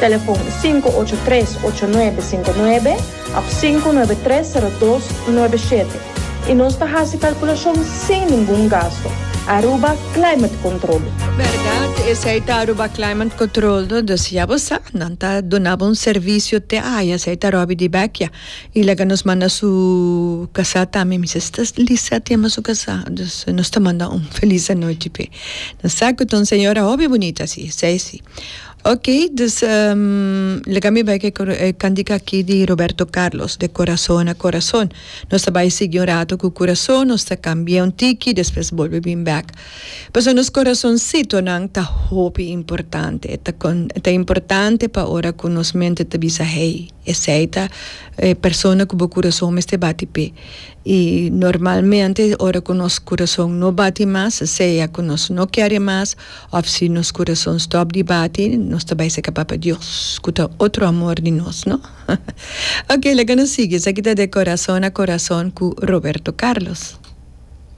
Telefon sinku ocho tres ocho nuebe sinku nuebe òf sinku nuebe tres sero dos nuebe shete i nos ta hasi kalkulashon sin ningun gastu. Aruba Climate Control. Bèrdat, esei ta Aruba Climate Control, dus ya bo sa, nan ta duna bo un servisio te aya, esei ta Robbie di Beckia, i laga nos manda su kasá tambe, mi se sta lisa tema su kasá, dus nos ta manda un felis anochi p'e. Nan sa ku ta un señora hopi bunita si, esei si. Ok, dus laga mi bai cu e cantica aki di Roberto Carlos, de corazon a corazon. Nos ta bai sigui un rato cu curason, nos ta cambia un tiki, despues bolbe bin bek. Pasobra nos corasoncitonan ta hopi importante, ta importante pa ora cu nos mente ta bisa hey. Esei ta e persona ku bo kurason mester bati p'e. I normalmente ora ku nos kurason no bati mas, sea ku nos no kere mas òf si nos kurason stòp di bati, nos ta bai seka Papa Dios ku ta otro amor di nos, no? Oke, laga nos sigui. Esaki ta De Corazón a Corazón ku Roberto Carlos.